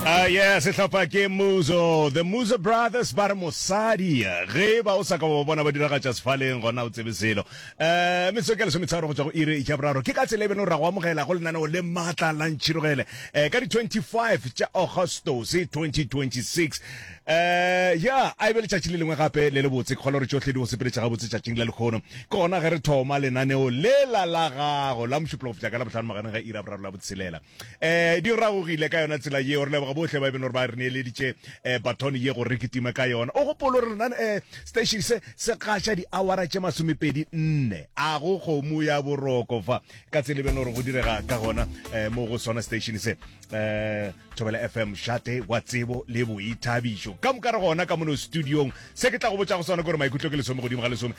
Ah, yeah, sehlopha ke muzo the muzo brothers ba re mosadi ge ba o sa ka wa bona ba diragatša sefaleng gona o tsebe selo um metsotso ka lesometsharo go tswa go ire ja boraro ke ka tsela e beno ra go amogela go lenaneo le maatla la ntšhirogele um ka di-25 tša augustos 2026 um ya a e be letšatši le lengwe gape le le botse ke kgolo gore tšohle di go sepeletša gabotse tšatšing la lekgono ke gona ge re thoma lenaneo lela la gago la mošupologo fitla ka la botlhano magareng ga ira boraro la botshelela Eh, di ragogile ka yona tsela yeo. Re leboga bohle ba e beno gore ba re neeleditše eh, baton ye gore re kitime ka yona. O gopolo re lena eh, station se se gaša diawara tše masomepedi nne a go kgomo ya boroko fa ka tsela e beno gore go direga ka gona eh, mo go sona station se eh, thobela fm shate wa tsebo le boithabišo ka moka re gona ka mono studiong se ke tla go botša go sona gore maikutlo ke lesome godimo ga lesome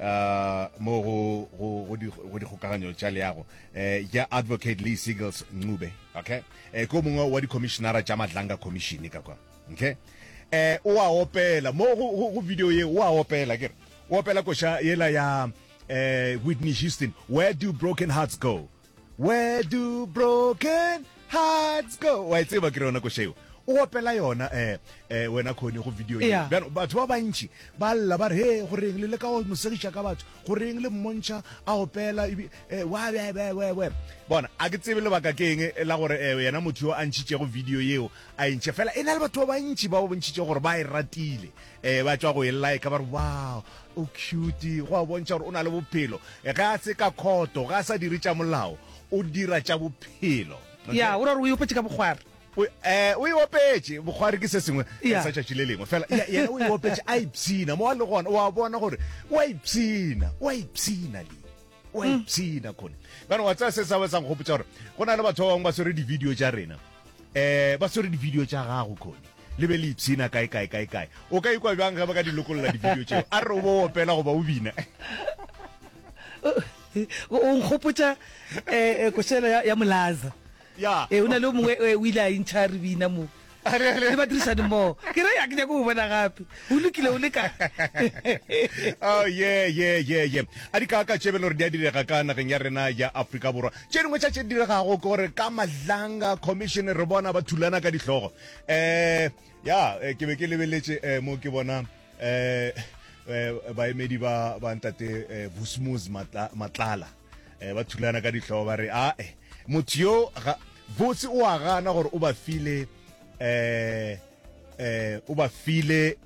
uh, mo go, go, go, di, go dikgokaganyo tša leago eh, ja advocate lee seagles ncube okay eh, ke mongwe wa dikomišenara tša madlanga commission ka kwa okay eh, o a opela mo go, go, go video ye o a opela kere o opela koša yela ya eh, whitney houston where do broken hearts go Where do broken hearts go wa e tseba ke re yona košeo o opela yona eh eh wena khone go video e Yeah. bjano batho ba bantši ba lla ba re he go reng le le ka go mosegiša ka batho go reng le mmontšha a opela ebi- eh, wa we we we we bona a ke tsebe lebaka ke eng eh, la gore eh, yena motho yo a ntšhitšego video yeo a e ntšhe fela e na le batho ba bantši ba bontšhitše gore ba e ratile e ba tšwa go e like ba re wow o cute go a bontšha gore o na le bophelo ge a se ka khoto ga a sa dire tša molao o dira tša bophelo ya o ra gore o iopetse ka bogware um eh, o iopetse bogware ke se sengwe eh, sa tšatši le lengwe fela yena o iopetse a ipshina mo a le gona o a bona gore o a ipshina o a ipshina le o a ipshina mm. khone kana wa tsaya se sa ba sang gopotsa gore go na le batho ba bangwe ba swere di-video tša rena um ba swere di-video tša gago khone le be le ipshina kae kae kae kae o ka ikwa bjang ge ba ka di lokolola di-video tšeo a re o bo opela goba o bina o nkgopotsa um eh, eh, košelo ya molaza Ee, go na le o mongwe o ile a intšha re bina mo le badirisani mmogo ke re ya ke nyako go bona gape o lokile o le kae oh yeah yeah yeah yeah a di kaka tše belo re di a direga ka nageng ya rena ya Afrika Borwa tše dingwe tša tše di diregago ke gore ka mahlanga commission re bona ba thulana ka dihlogo eh ya eh, ke be ke lebeletše eh, mo ke bona eh, eh baemedi ba ba ntate eh, Busmus Matla- Matlala eh, ba thulana ka ditlhogo ba re ae motho yo botse o a gana gore o ba file eh eh o ba file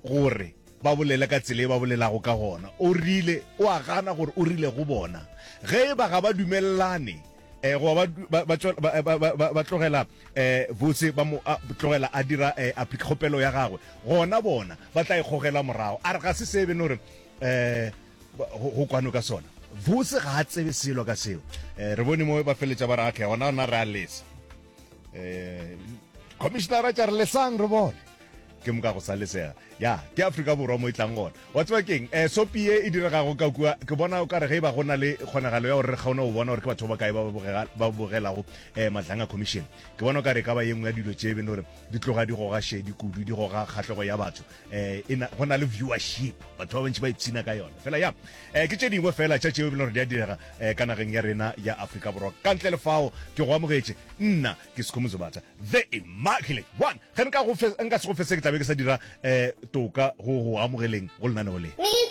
gore ba bolela ka tsela e ba bolelago ka gona o rile o a gana gore o rile go bona ge e ba ga ba dumelelane eh go ba ba tlogela eh botse ba mo tlogela a dira eh, application ya gagwe gona bona ba tla ikgogela e morago a re ga se sebe no re eh go kwano ka sona bose ga a tsebe selo ka seo um re bone mo ba feletša ba re atlhe gona ona re a lesa um commissionara tša re lesang re bone ke moka go sa lesega ya ke afrika borwa mo e tlang gona wa tseba keng um sopi e e diregago ka kua ke bona o ka re ge e ba go na le kgonagalo ya gore re kgaone go bona gore ke batho ba kae ba bogelago um madlang a commission ke bona o ka re e ka ba ye nngwe ya dilo tse e bene gore di tloga di goga shedi kudu di goga kgatlhego ya batho eh e na go na le viewership batho ba bantši ba ipshina ka yona fela ya eh ke tše dingwe fela tša tšeo e bile gore di a direga eh ka nageng ya rena ya Afrika Borwa ka ntle le fao ke go amogetše nna ke Sikhumuzo Batha the immaculate one ge nka go nka se go fese ke tlabe ke sa dira eh toka go go amogeleng go lenaneo le